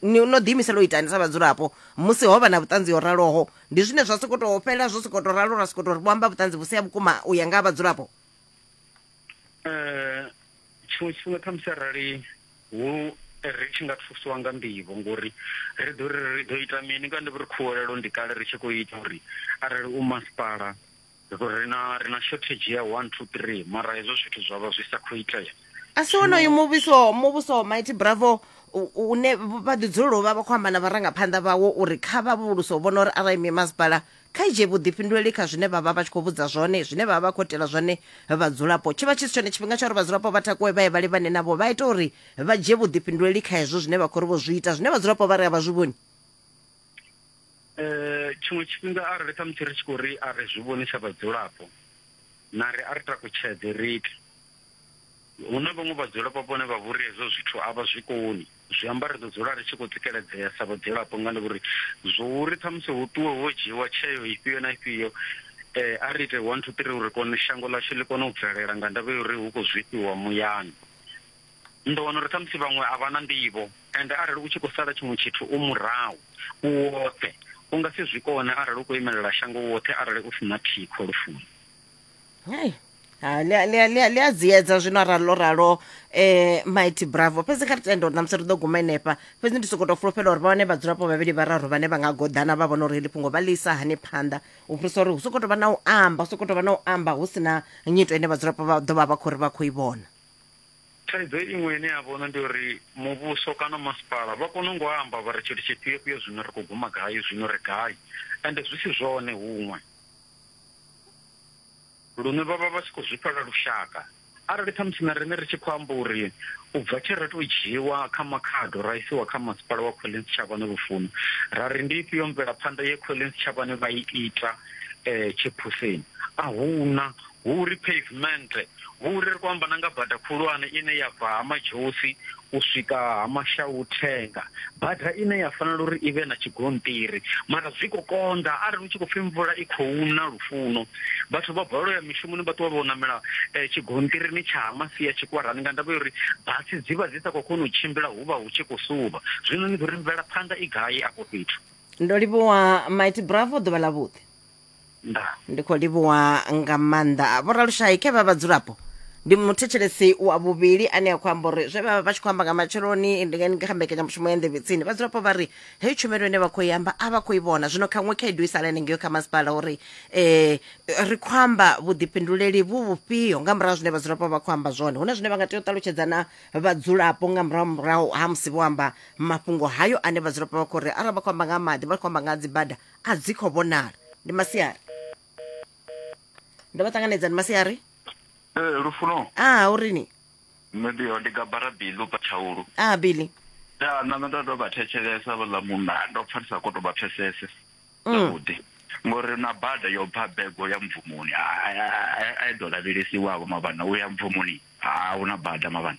ni no ḓiimisela u itani sa vhadzulapo musi ho vha na vhuṱanzi ho raloho ndi zwine zwa sokou tou fhela zwo sokou tou ralo ra sokou tou ri vho amba vhuṱanzi vhu si ha vhukuma u ya nga ha vhadzulapo um tshiṅwe tshifhinga khamusi arali hu ri tshi nga thusiwa nga nḓivho ngori ri ḓo ri ri ḓo ita mini nga ndi ri khuwelelo ndi kale ri tshi khou ita uri arali u masipala Ri na, ri na shortage ya one two three mara hezwo zwithu zwa vha zwi sa khou itea a si wonoyu muvhuso muvhuso wa mighty bravo u- u- une vha ḓi dzulela u vha vha khou amba na vharangaphanḓa vhawo uri kha vha vhuluso vhona uri arali mimasipala kha i dzhie vhuḓifhinduleli kha zwine vha vha vha tshi khou vhudza zwone zwine vha vha vha khou itela zwone vhadzulapo tshi vha tshi si tshone tshifhinga tsha uri vhadzulapo vha takuwe vha ye vha livhane navho vha ita uri vha dzhie vhuḓifhinduleli kha hezwo zwine vha khou ri vho zwi ita zwine vhadzulapo vha ri a vha zwi vhoni eh tshiṅwe tshifhinga arali ṱhamusi ri tshi khou ri a ri zwi vhoni sa vhadzulapo na ri a ri takutshedze ri iti hu na vhaṅwe vhadzulapo vhone vha vhori hezwo zwithu a vha zwi koni zwi amba ri ḓo dzula ri tshi khou tsikeledzea sa vhadzulapo nga ndi vhori zwo uri ṱhamusi hu ṱuwe ho dzhiiwa tsheo ifhio na ifhio eh a ri ite one two three uri kone shango ḽashu ḽi kone u bvelela nga ndavha ya uri hu khou zwifhiwa muyani Ni ḓo wana uri khamusi vhaṅwe a vha na nḓivho, ende arali u tshi khou sala tshiṅwe tshithu u murahu, u woṱhe, u nga si zwi kone arali u khou imelela shango u woṱhe arali u si na thikho lufuni. Hei. Ha, ḽi a- ḽi a- ḽi a- ḽi a dziedza zwino arali ḽo ralo um mighty bravo fhedzi kha ri tende uri ṋamusi ri ḓo guma henefha fhedzi ndi sokou tou fulufhela uri vha wane vhadzulapo vhavhili vhararu vhane vha nga goḓana vha vhona uri heḽi fhungo vha ḽi isa hani phanḓa u fhirisa uri hu sokou tou vha na u amba hu sokou tou vha na u amba hu si na nyito ine vhadzulapo vha ḓo vha vha khou ri vha khou i vhona Thaidzo iṅwe ine ya vhono ndi uri muvhuso kana masipala vha kona ngo amba vha ri tshithu tshifhio fhio zwino ri khou guma gai zwino ri gai ende zwi si zwone huṅwe lune vha vha vha tshi khou zwi fhela lushaka arali khamusi na riṋe ri tshi khou amba uri u bva tshe ra tou dzhiiwa kha makhado ra isiwa kha masipala wa Collins Tshavhane Lufuno ra ri ndi ifhio mvelaphanḓa ye Collins Tshavhane vha i ita tshiphuseni a huna Hu uri pheivimennde, hu uri ri khou amba na nga bada khulwane ine ya bva Ha Madzhosi u swika Ha Mashauthenga, bada ine ya fanela uri i vhe na tshigonṱiri. Mara zwi khou konḓa, arali hu tshi khou pfi mvula i khou na, Lufuno, vhathu vha balelwa u ya mishumoni vha ṱuwa vho ṋamela tshigonṱirini tsha Ha Masia Tshikwarani nga ndavha ya uri basi dzi vha dzi sa khou kona u tshimbila, hu vha hu tshi khou suvha. Zwino ni ḓo ri mvelaphanḓa i gai afho fhethu? Ndo livhuwa Mighty Bravo, ḓuvha ḽavhuḓi. ndaa ndi khou livhuwa nga maanḓa vhoralushayi khe vha vhadzulapo ndi muthetshelesi wa vhuvhili ane a khou amba uri zwe vha vha vha tshi khou amba nga matsheloni ndi nga- ndi kha mbekanyamushumo ya nḓevhe tsini vhadzulapo vha ri heyi tshumelo ine vha khou i amba a vha khou i vhona zwino khaṅwe khaedu i sala henengeyo kha masipala uri um ri khou amba vhuḓifhinduleli vhu vhufhio nga murahu ha zwine vhadzulapo vha khou amba zwone hu na zwine vha nga tea u ṱalutshedza na vhadzulapo nga murahu murahu ha musi vho amba mafhungo hayo ane vhadzulapo vha khou ri arali vha khou amba nga ha maḓi vha khou amba nga ha dzibada a dzi khou vhonala ndi masiari ndo vha ṱanganedza ndi masiari ee lufuno a urini nṋe ndi ndi gabara bili u patshaulu a bili ya nṋe ndo tou vha thetshelesa vhaḽa munna ndo pfa ndi sa kho to vha pfesese mm. zwavhuḓi ngori na bada yo bva bego ya mvumoni a i ḓo lavhelesiwavho mavhana u ya mvumoni ha hu na bada mavhana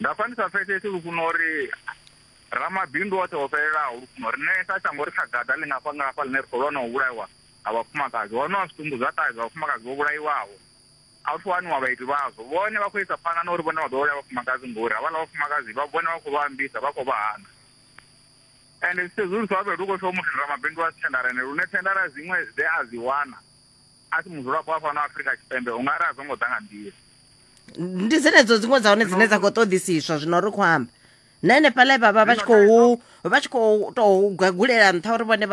Nda pfa ndi sa pfesesi lufuno uri ramabindu oṱhe o fhelelaho lufuno riṋe sa shango ri kha gaḓa ḽi ngafha ngafha ḽine ri khou lwa na u vhulaiwa ha vhafumakadzi. Ho no wa zwitumbu zwa ṱahe zwa vhafumakadzi vho vhulaiwaho, a hu thu waniwa vhaiti vhazwo. Vhone vha khou isa phanḓa na uri vhone vha ḓo vhulaya vhafumakadzi ngori havhaḽa vhafumakadzi vha vhone vha khou vha ambisa, vha khou vha hana. Ende zwi sedzulusa ho vhuya hu khou pfi hoyu muthu ndi ramabindu a si thendarende lune thendara dziṅwe dze a dzi wana a si mudzulapo wa fhano Afrika Tshipembe u nga ri a dzo ngo ḓa nga nḓila. ndi dzenedzo dziṅwe dza hone dzine dza khou ṱoḓisiswa zwino ri khou amba na henefhaḽa vhavha vha tshi khou vha tshi khou tou gwagulela nṱha uri vhone vha